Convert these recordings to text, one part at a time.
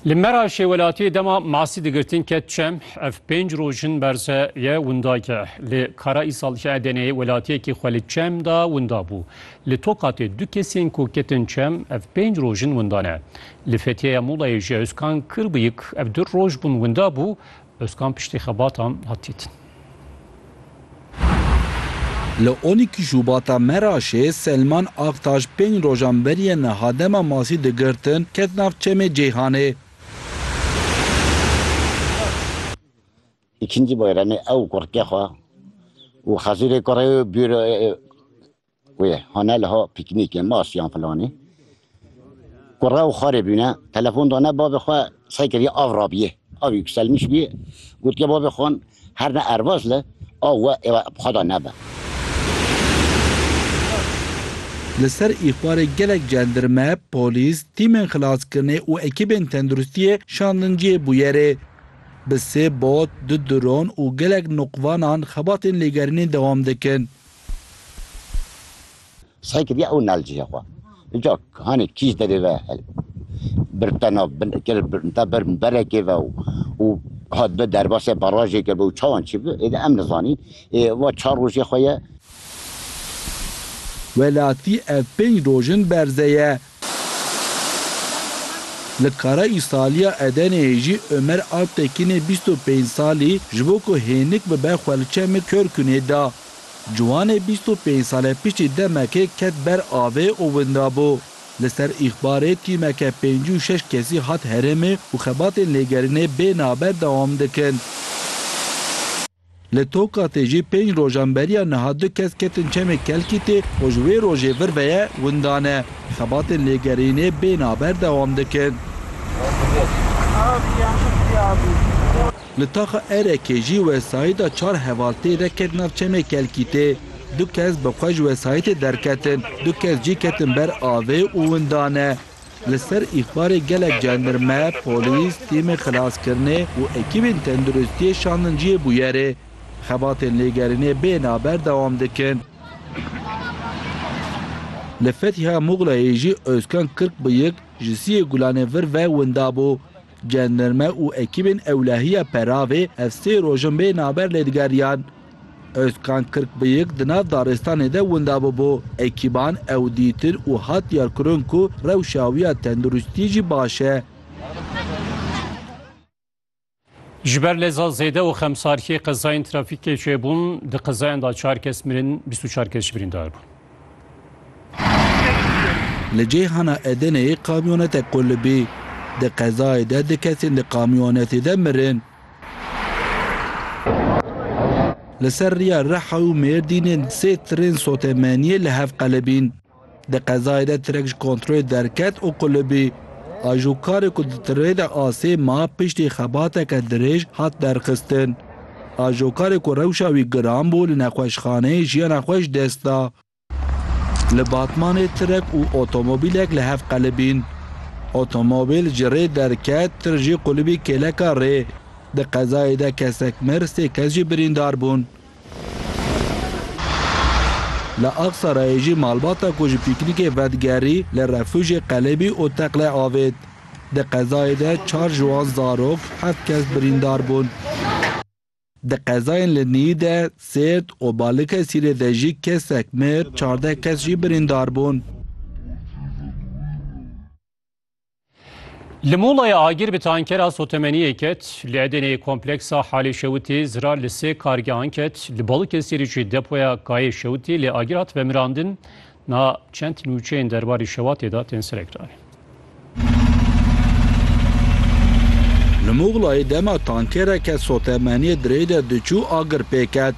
Li Meraşê welatiyê dema masî digirtin ket çem, ev pênc roj in berze ye winda ye. Li Karaîsal ji Edeneyê welatiyekî xwe li çem da winda bû. Li Tokatê du kesên ku ketin çem ev pênc roj in winda ne. Li Fethiyeya Mulayê ji Ozkan Kirbiyik ev du roj bûn winda bû, Ozkan piştî xebatan hat dîtin. Li Onîkî Şûbata Meraşê Selman Aktaş pênc rojan beriye niha dema masî digirtin ket nav çemê Ceyhanê. Îkincî bayremê ew kurikê xwe û Xezûrê kurê û bîr. Wê hane liha pîknîkê mas yan filanî. Ku re û xarê bîne telefon dane bavê xwe sey kiriye av rabiyê. Av yükselmiş biyê. Gotiye bavê xwan her ne ervaz li av we êva xweda nebe. Li ser îxbarê gelek cendirme, polîs, tîmên xilaskirinê û ekîbên tenduristiyê şandin cihê bûyerê. Bi sê bot, du dron û gelek noqvanan xebatên lêgerînê dewam dikin. Sey kiriye ew nalcîya xwe. Înca hanê kîj derê ve birta nav birta ber berekê ve û hat bi derbasê barajêke bi û çawan çi bi ê de em nizanîn. Ê va çar rojê xwe ye. Welatî ev pênc roj in berze ye Li Karaîsaliya Edeneyê jî Omer Alptekinê bîst û pênc salî ji bo ku hênik bibe xwe li Çemê Körkunê da. Ciwanê bîst û pênc sale piştî demekê ket ber avê û winda bû. Li ser îxbarê tîmeke pêncî û şeş kesî hat herêmê û xebatên lêgerînê bê naber dewam dikin. Li Tokatê jî pênc rojan beriya niha du kes ketin çemê Kelkîtê û ji wê rojê vir ve ye windan e. Xebatên lêgerînê bên a ber dewam dikin. Li taxa Erekê jî wesayîta çar heval tê de ket nav çemê Kelkîtê. Du kes bi xwe ji wesayîtê derketin, du kes jî ketin ber avê û windan e. Li ser îxbarê gelek cendirme, polîs, tîmên xilaskirinê û ekîbên tenduristiyê şandin cihê bûyerê. Xebatên lêgerînê bê naber dewam dikin. Li Fethiya Muxleyê jî Ozkan Kirkbıyık ji siyê gulanê vir ve winda bû. Cenderme û ekîbên ewlehiya Peravê ev sê roj in bê naber lê digeriyan. Ozkan Kirkbıyık di nav daristanê de winda bûbû. Ekîban ew dîtin û hat diyarkirin ku rewşa wî ya tenduristiyê jî baş e. Ji ber leza zêde û xemsarkê qezayên trafîkê çêbûn, di qezayan de çar kes mirin, bîst û çar kes jî birîndar bûn. Li cihana Edeneyê kamyonetek qulibî. Di qezayê de du kesên di kamyonetê de mirin. Li ser riya Riha û Mêrdînê sê tirên sotemeniyê li hev qelibîn. Di qezayê de tirek ji kontrolê derket û qulibî. Ajokarê ku di tirê de asê ma piştî xebateke dirêj hat derxistin. Ajokarê ku rewşa wî giran bû li nexweşxaneyê jiyana xwe ji dest da. Li Batmanê tirek û otomobîlek li hev qelibîn. Otomobîl ji rê derket, tir jî qulibî kêleka rê. Di qezayê de kesek mir, sê kes jî birîndar bûn. Li Axisarayê jî malbata ku ji pîknîkê vedigerî li refûjê qelibî û teqle avêt. Di qezayê de çar ji wan zarok, heft kes birîndar bûn. Di qezayên li Nîyî de, Sêrt û Balikesirê de jî kesek mir, çardeh kes jî birîndar bûn. Li Mulayê agir bi tankera sotemeniyê ket, li Edeneyê kompleksa Halê Şewitê zirar li sê kargehan ket, li Balikesirê jî depoya Kayê Şewitê lê agir hat vemirandin, Niha çend nûçeyên derbarî şewatê de tên serekdanîn. Li Muxlayê dema tankereke sotemeniyê di rê de diçû agir pê ket.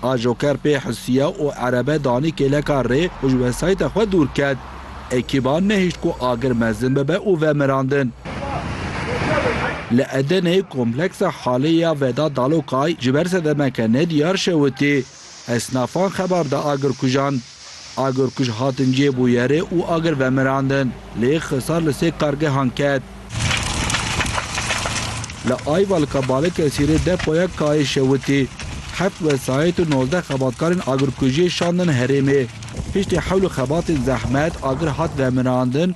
Ajoker pê hisiya û erebe danî kêleka rê û ji wesayîta xwe dûr ket. Ekîban nehişt ku agir mezin bibe û ve mirandin. Li Edeneyê kompleksa Halê ya Veda Dalokay ji ber sedemeke nediyar şewitî. Esnafan xebar da agirkujan. Agir ku ji hatin cê bû yerê û agir vemirandin. Lê Xisar li sê kargehan ket. Li Ayvalka Balikesirê depoya KA'yê şewitî. Heft wesayît û nozdeh xebatkarên agirkujiyê şandin herêmê. Piştî hewl û xebatên zehmet agir hat vemirandin.